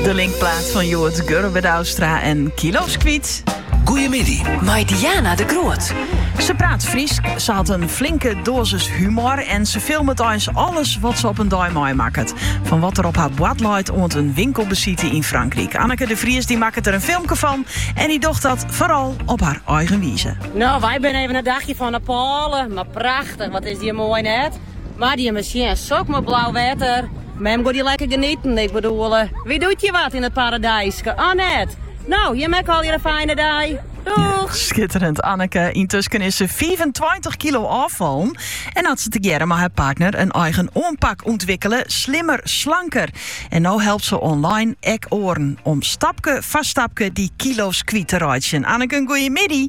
De linkplaat fan Joert Gurre-Widouwstra en Kilo's Kwyt. Goeiemiddag, mei Diana de Groot. Ze praat Fries, ze had een flinke dosis humor en ze filmet eins alles wat ze op een dei meimakket. Van wat er op haar boad leit oant een winkelbesite in Frankrijk. Anneke de Vries die makket er een filmke van en die docht dat vooral op haar eigen wize. Nou, wij zijn even een dagje van Nepal, maar prachtig, wat is die mooi net. Moatte je mar sjen, sok moai blau wetter. Mem gie dy lekker genieten. Ik bedoel, wie doet je wat yn it paradyske? Anne net? No, jim ek allegear in fijne dei. Doeg! Skitterend, Anneke. Yntusken is se fiifentweintich kilo ôffallen en hat se tegearre mei har partner in eigen oanpak ûntwikkele, Slimmer Slanker. En no helpt se online ek oaren om stapke foar stapke dy kilo's kwyt te reitsjen. Anneke, goeiemiddei!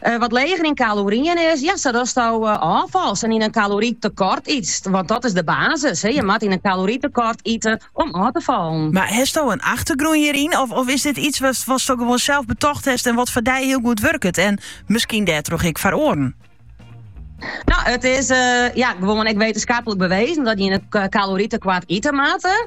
Eh, wat leger yn kaloryen is. Ja, sa datsto eh, ôffals en yn in kalorietekort itst. Want dat is de basis. Hè. Je moat in kalorietekort iten om ôf te fallen. Mar hesto in achtergrûn hieryn? Of, of is dit iets wat, wat sto gewoon zelf betocht hebt en wat voor jou heel goed werkt? En misschien daardoor ik voor oren? Nou, het is eh, ja, gewoon ik wetenschappelijk bewezen dat je een calorietekort eten maakt.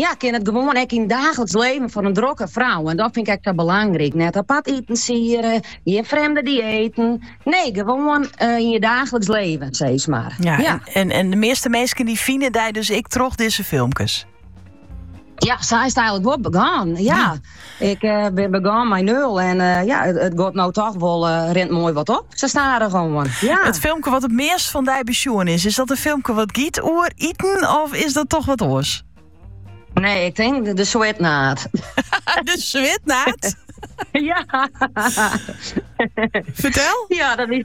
Ja, ik kin it gewoan ek yn daachliks leven fan in drokke frou. En dat fyn ik ek sa belangryk. Net apart iten siede, gjin frjemde diëten. Nee, gewoan eh, yn je daachliks leven, sis mar. Ja, En, en, de measte minsken dy fine dy dus ek troch dizze filmkes. Ja, sa is it eigenlik wol begûn. ja. Ik bin begûn mei nul en ja, it giet no toch wol rint moai wat op. Sa stadich oan. Ja. It filmke wat it meast fan dy besjoen is, is dat in filmke wat giet oer iten of is dat toch wat oars? Nee, ik tink de, de switnaad. de switnaad? ja. Fertel? Ja, dat is...